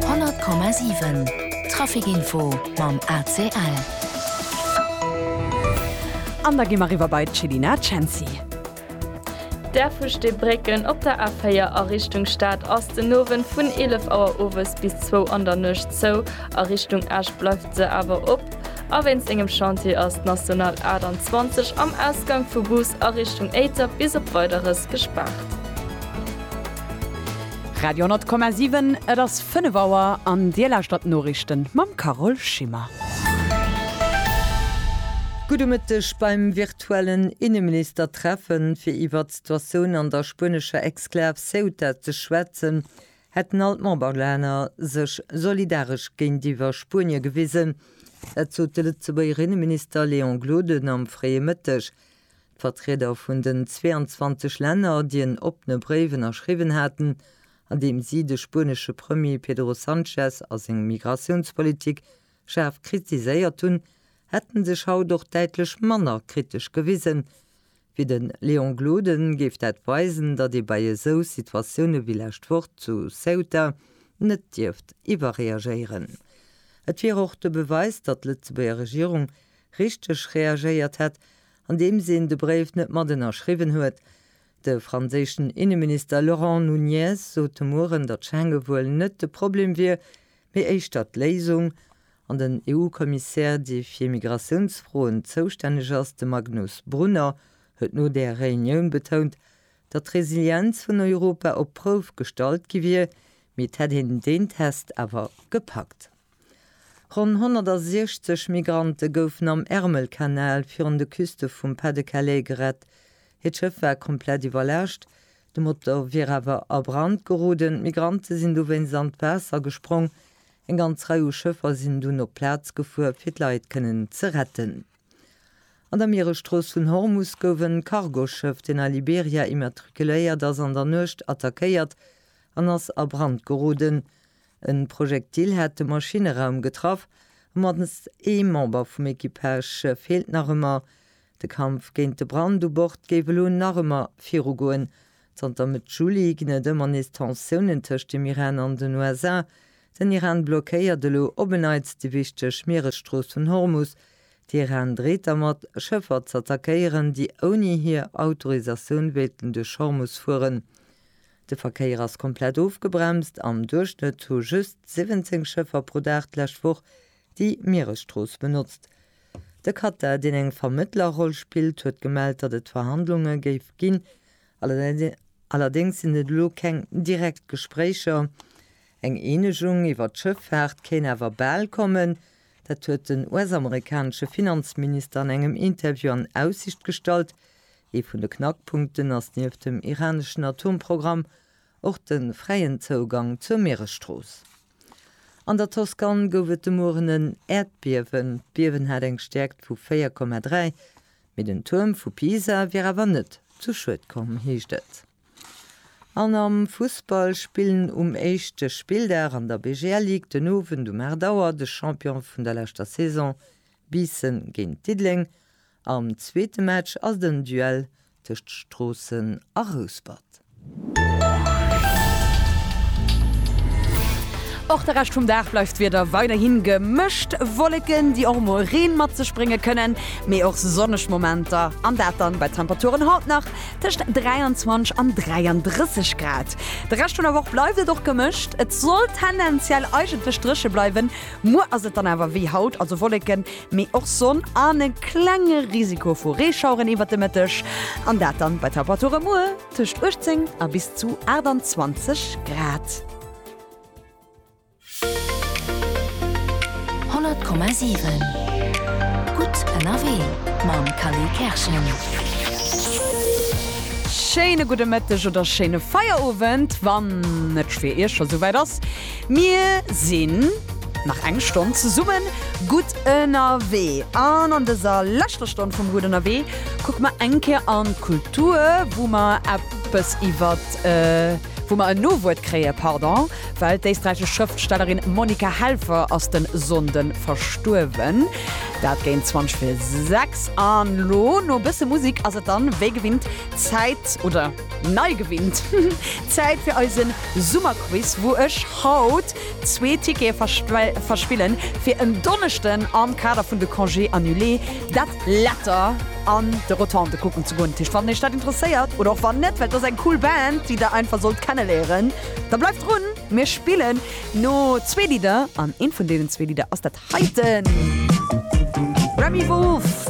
100,7 Trafic Info mam ACL. An da gi mer riwwer bei d'Chelina Cenci. D'Airfusch De Brécken op der A4 a Richtung Stad ass den Owend vun 11 Auer owes bis zwou an der Nuecht zou, a Richtung Esch bleift se awer op. A wéinst engem Chantier ass d'National 28 am Ausgank vu Goos a Richtung Éiter bis op Weideres gespaart. Radio 10,7, Et ass 5 Auer an Dir lauschtert d'Noriichten mam Carole Schimmer. Gudde Mëtteg. Beim virtuellen Inneministertreffe fir iwwert d'Situatioun an der spuenescher Exklav Ceuta ze schwätzen, hätten all d'Memberlänner sech solidaresch géintiwwer Spuenie gewisen. Dat sot de Lëtzebuerger Inneminister Léon Gloden am fréie Mëtteg D'Vertrieder vun den 22 Länner, déi en oppene Bréif ënnerschriwwen haten, an deem si de spuenesche Premier Pedro Sanchez a seng Migratiounspolitik schaarf kritiséiert hunn, hätte sech haut och däitlech manner kritesch gewisen. Wéi de Léon Gloden, géif dat weisen, datt ee bei esou Situatioune wéi lescht Woch zu Ceuta net dierft iwwerreagéieren. Et wier och de Beweis, datt d'Lëtzebuerger Regierung richteg reagéiert hätt, andeems een de Bréif net mat ënnerschriwwen huet. De franséischen Inneminister Laurent Nunez sot de Mueren, datt Schengen wuel net de Problem wier, mee éischter d'Léisung. An den EU-Kommissär, dee fir Migratiounsfroen zoustänneg ass, de Magnus Brunner, huet no där Reunioun betount, datt d'Resilienz vun Europa op d'Prouf gestallt gi wier, mee et hätt een deen Test awer gepackt. Ronn 160 Migrante goufen am Ärmelkanal virun de Küste vum Pas-de-Calais gerett. Hiert Schëff war komplett iwwerlaascht, de Motor wier awer a Brand geroden. D'Migrante sinn dowéinst an d'Waasser gesprong. Eng ganz Rei u Schëffer sinn dunn op d'Plaz gefuer, fir d'Leit kënnen ze retten. An der Mieresstrooss vun Hormus gouf e Cargoschëff, deen a Liberia immatrikuléiert ass, an der Nuecht attackéiert an ass a Brand geroden. E Projektil hat de Maschinneraum getraff a mannst ee Member vum Equipage feelt nach ëmmer. De Kampf géint de Brand u Bord géif elo nach ëmmer virugoen. Zanter Mëtt Juli ginn et ëmmer nees Tensiounen tëscht dem Iran an den USA. Den Iran blockéiert elo op en Neits déi wichteg Mieresstrooss vun Hormus. De Iran dreet dermat, Schëffer z'attackéieren, déi ouni hir Autorisatioun wéilten duerch Hormus fueren. De Verkéier ass komplett ofgebremst, am Duerchschnëtt hu just 17 Schëffer pro Dag d'lescht Woch déi Mieresstrooss benotzt. De Katar, deen eng Vermëttlerroll spillt, huet gemellt, datt et Verhandlunge géif ginn, allerdéngs sinn et elo keng direkt Gespréicher. Eng Eenegung iwwer d'Schëffaart kéint awer bal kommen, dat huet den US-amerikanesche Finanzminister an engem Interview an Aussicht gestallt. Ee vun de Knackpunkten ass nieft dem iraneschen Atomprogramm och de fräien Zougang zur Mieresstrooss. An der Toskan gouf et de Mueren en Äerdbiewen. D'Biewen hat eng Stäerkt vu 4,3, mee den Tuerm vu Pisa wier awer net zu Schued komm, heescht et. An am Fussball spillen um éischte Spilldag an der BGL Ligue den Owend um 8 Auer de Champion vun der leschter Saison Biissen géint Diddeleng Am zweete Match ass et en Duell tëscht Stroossen a Rouspert. Och de Rescht vum Dag bleift d'Wieder weiderhi gemëscht, Wolleken, déi och mol Reen mat sech brénge kënnen, mee och sonneg Momenter, an dat dann bei Temperaturen haut nach tëscht 23 an 33 Grad. De Rescht vun der Woch bleift et och gemëscht, et soll tendenziell eigentlech dréche bleiwen. Muer ass et dann awer wéi haut, also Wolleken, mee och Sonn an e klenge Risiko vu Reeschaueren iwwert de Mëtteg, an dat dann bei Temperature muer tëscht 18 a bis zu 28 Grad. 100,7 Gutt ënnerwee mam Kally Kerschen. Schéine gudde Mëtteg oder schéine Feierowend, wann et fir Iech scho souwäit ass. Mir sinn nach eng Stonn zesummen gutt ënnerwee an an dëser leschter Stonn vum Gutt ënnerwee kucke mer eng Kéier an d'Kultur, wou mer eppes iwwert, wou mer en Nowuert kréie pardon, well d'éisträichesch Schrëftstellerin Monika Helfer ass de Sonnde verstuerwen. Dat géint 20 fir 6 an elo no e bësse Musik ass et dann wéi gewinnt Zäit, oder? Nei gewinnt! Zäit fir eisen Summerquiz, wou ech haut zwee Tickete verspillen fir en Donneschden am Kader vun de Congés annulés dat Letter an de Rotonde kucken ze goen. Dat heescht, wann Iech dat interesséiert, oder och wann net, well et ass eng cool Band, déi der einfach sollt kenneléieren, da bleift drun! Mir spillen no zwee Lidder an eent vun deenen zwee Lidder ass dat heiten. Remi Wolf!